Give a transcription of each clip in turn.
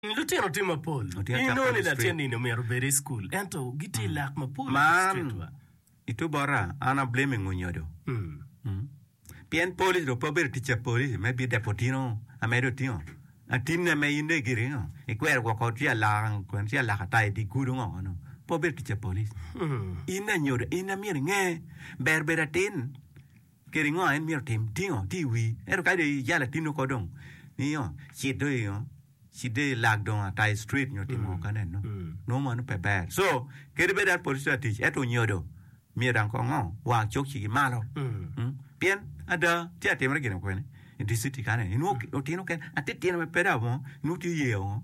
Lutino tye mapol. Inoni latin nini omyero obed i cukul ento gitye i lak mapol i distrik wa. I two bota an ablame ngo nyodo pien police dong pe obedo tic pa police me bide potino ame dong otingo atinne me in dong gire ngo ikwero woko ci alaka kwene ci alaka ata idi gudo ngo kono pe obedo tic pa police in anyodo in myero inge ber bedo atin Kede ngo en myero otim? Tingo tye i wii. Ento kadi dong ijalo atinno ko dong nio cit dong ingo cit dong ilag dong ata i street nyo timo ngo ka nen no. Nongo mano pe ber. So kadi bed an police latic ento onyodo myero dang kong ngo wa cok cigi malo. Mm. Pien ada tye atimre gin okwene i dicity ka nen inwo otino ken atitino me peda mo inwo tye yeyo ngo.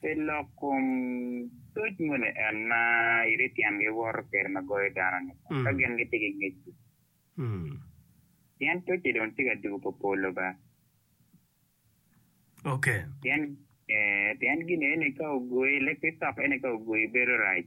Pe lok kom toc moni en ma iri tyengi woto kwede ma goyo dano-ni ka gin gitye ki ngec-ci. Pien tocci dong tye ka dugo pa polo ba. Pien gin eni ka ogoyi, leb ki cok eni ka ogoyi bedo rac.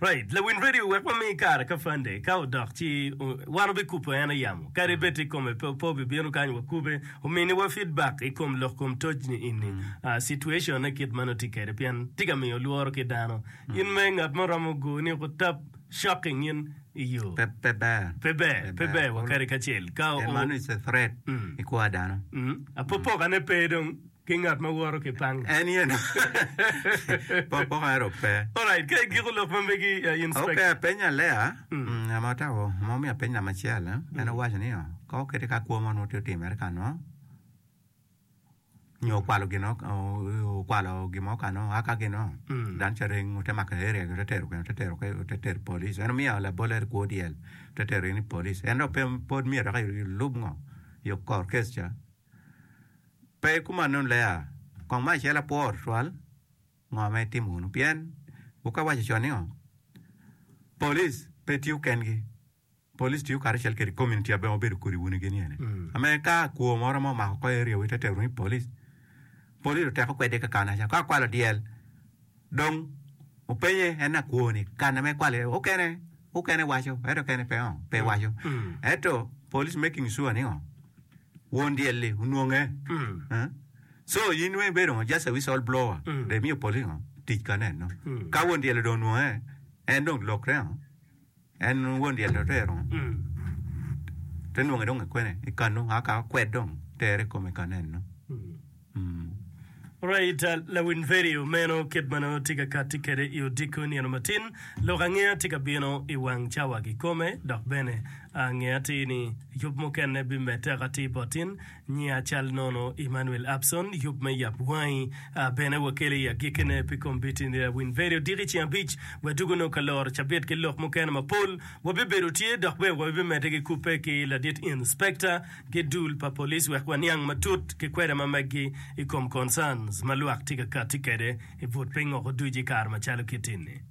Right, lawin radio wek wami kare ka fande ka odok ci wan obi kupo en ayamo kadi bed tye kome pe opo obi bino kany wa kube omini wa feedback i kom lok kom toc ni ini uh, situation ne kit ma nongo tye kede pien tye ka miyo lworo ki dano in me ngat mo romo go ni ko tap shocking in i yo Pe pe ber. pe ber pe ber kulu. wakadi kacel ka En o- mano is a threat Mm. i kwa dano. Mm, apopokane pe dong ki ngat ma woto ki pang. En ye no. Pokpoko ero pe. Alright, ka igiko lok ma megi, uh, inspector. Okay, apenyo Alea, mm, ama otako, ma omiyo apeny lama acel, eh? En owaco ni, oh, ka okete ka kwo mo nwo tye otimere ka nwo, nyo okwalo gin, o- o- okwalo gin mo ka nwo, a ka gin nwo, Mm. dan ca reng, ote mako area gi, ote tero kene, ote tero ke, ote tero police. En omiyo labol eri kwo dyel, ote tero in i police. En dok pe, pod myero dok ilub ngo? Yo kor kes ca. Pe kumannu Lea? Kong ma acel apwor twal ngo ma itimo wunu pien wu ka waco con ni ngo? Police pe tiyo kengi. Police tiyo karacel kede community abbe ma obedo kodi wun gini ene. Ame ka kwo moro ma omako ko area wu ite tero ni police. Police oteko kwede kakanaca. Ka kwalo dyel Dong openye en akwo ni karne me kwal aye okene okene waco ento kene pe ongo pe waco ento police making sure ni ngo won dyelli onwonge Eh? so in weng bedo ngo just a whistle blower de miyo police ngo tic kaneno ka won dyelli dong onwonge en dong lokre ngo En won dyel otero te nonge dong i kwene i kanu a ka okwed dong tere i kome kan eno. Right, uh, lawin Feri omeno kit ma nongo watye ka kati kwede i odiko nino matin. Lok angeya tye ka bino i wang cawa kikome, dok bene angeya atir ni yub mukene bimedde aka atir bot in. Nya cal nono Emmanuel Abson, Yub me Yab Wangi, a bene wakele i agikkine pi kombiti ni Rawin Veri odiki ceng abic. Wadwogo nongo ka loro cabit ki lok mukene mapol. Wabibedo tye dok bene wabimedde ki kubbe ki ladit Inspecta ki dul pa police wek waniang matut ki kwede ma meggi i kom concerns ma lwak tye ka kati kwede i but pingo oduc i kare macalo kiti ni.